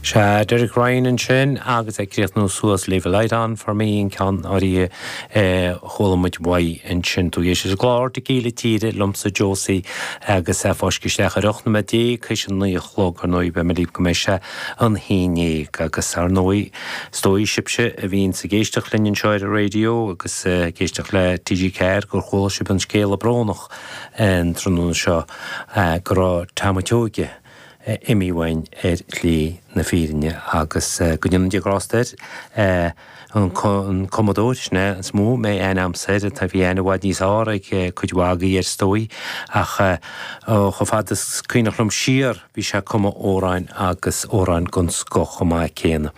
Sea, Derek Ryan ansin, agus é ag críochnú suas, Leave a light on for me, an ceann a chuala muid uaidh ansin. Tugadh sé an glór de Gile Tíre liomsa, Josie, agus é ag fáisceadh isteach ar ocht noiméad déag théis a naoi a chlog, ar ndóigh, beidh mé libh go mbeidh sé an haon ndéag. Agus, ar ndóigh, is dóigh, sibhse a bhíonns ag éisteacht linn anseo ar an raidió agus ag éisteacht le TG4 gur chuala sibh an scéala brónach, go moch an tráthnóna seo go raibh Tom a' tSeoighe imithe uainn ar shlí na fírinne agus go ndéana Dia grásta air. An cumadóir sin é is mó a mbeadh aithne agamsa air, tá, bhí aithne i bhfad níos fearr ag cuid mhaith agaí air is dóigh, ach chomh fada is is cuimhneach liom siar bhí sé ag cumadh amhráin agus amhráin den scoth chomh maith céanna.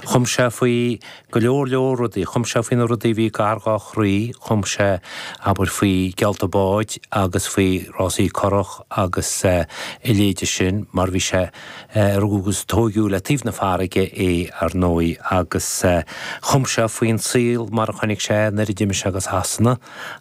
Chum sé faoi Go leor leor rudaí. Chum sé faoi na rudaí a bhí gar dhá chroí, chum sé, abair, faoi gheallta báid agus faoi rásaí curach agus a leithéide sin mar bhí sé, rugadh agus tóigeadh le taobh na farraige é, ar ndóigh, agus chum sé faoin saol mar a chonaic sé é nuair a d'imigh sé go Sasana.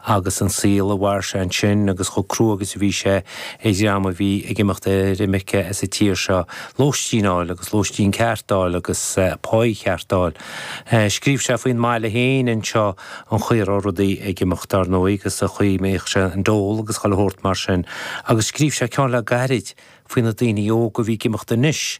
agus an saol a mhair sé ansin agus chomh crua agus a bhí sé ar dhream a bhí ag imeacht ar imirce as an tír seo, lóistín a fháil agus lóistín ceart a fháil agus páí cheart a fháil. Scríobh sé faoin mbaile féin anseo an chaoi a raibh rudaí ag imeacht, dar ndóigh, agus an chaoi a mbíodh sé an dól agus chuile shórt mar sin. Agus scríobh sé ceann le gairid faoi na daoine óga a bhí ag imeacht anois,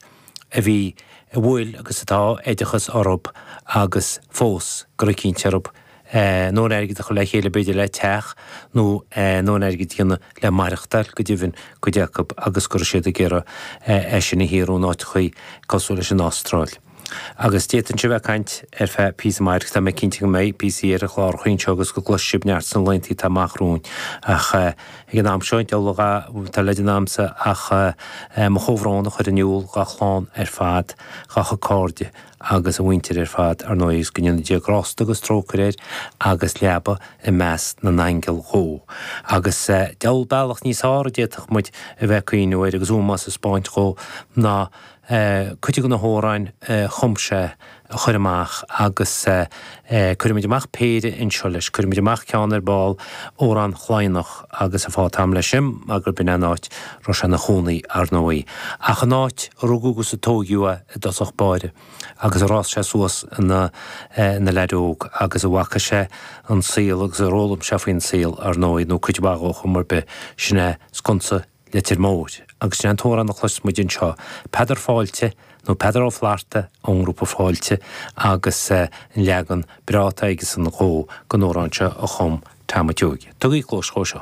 a bhí, a bhfuil agus atá oideachas orthub agus fós go raibh cinnte orthub a ndóthain airgid a chur le chéile b'fhéidir le teach nó a ndóthain airgid a dhéanamh le maireachtáil, go deimhin cuid acu agus go raibh siad ag iarraidh é sin a shaothrú in áiteachaí cosúil leis an Astráil. Agus d'fhéadfainnse a bheith ag caint ar feadh píosa maith agus tá mé cinnte go mbeidh píosaí ar chlárachaí anseo agus go gcloisfidh sibh neart sna laethanta atá amach romhainn ach, Ag an am seo, deabhal tada le déanamh agamsa ach mo chomhbhrón a chur in iúl dá chlann ar fad, dá chuid cairde agus a mhuintir ar fad, ar ndóigh, agus go ndéana Dia grásta agus trócaire air agus leaba i measc na n-aingeal dhó. Agus deabhal bealach níos fearr a d'fhéadfadh muid a bheith ag cuimhniú air agus ómós a spáint dhó ná, é, cuid de na hamhráin a chum sé a chur amach agus cuirimid amach péire anseo leis, cuirimid amach ceann ar ball, Amhrán Chladhnach agus an fáth atá agam leis sin mar gurb in é an áit a raibh sé ina chónaí, ar ndóigh, ach an áit a rugadh agus a tóigeadh é i dtosach báire agus ar fhás sé suas ina leaid óg agus a bhfaca sé an saol agus ar fhoghlaim sé faoin saol, ar ndóigh, nó cuid mhaith dhó ar chuma ar bith, sin é Sconsa Leitir Móir, agus is é an t-amhrán a chloisfidh muid anseo, 'Peadar Fáilte', nó 'Peadar Ó Flatharta', ón ngrúpa Fáilte, agus an leagan breá atá aigesan dhó den amhrán seo a chum Tom a' tSeoighe. Tugaigí cluas dhó seo.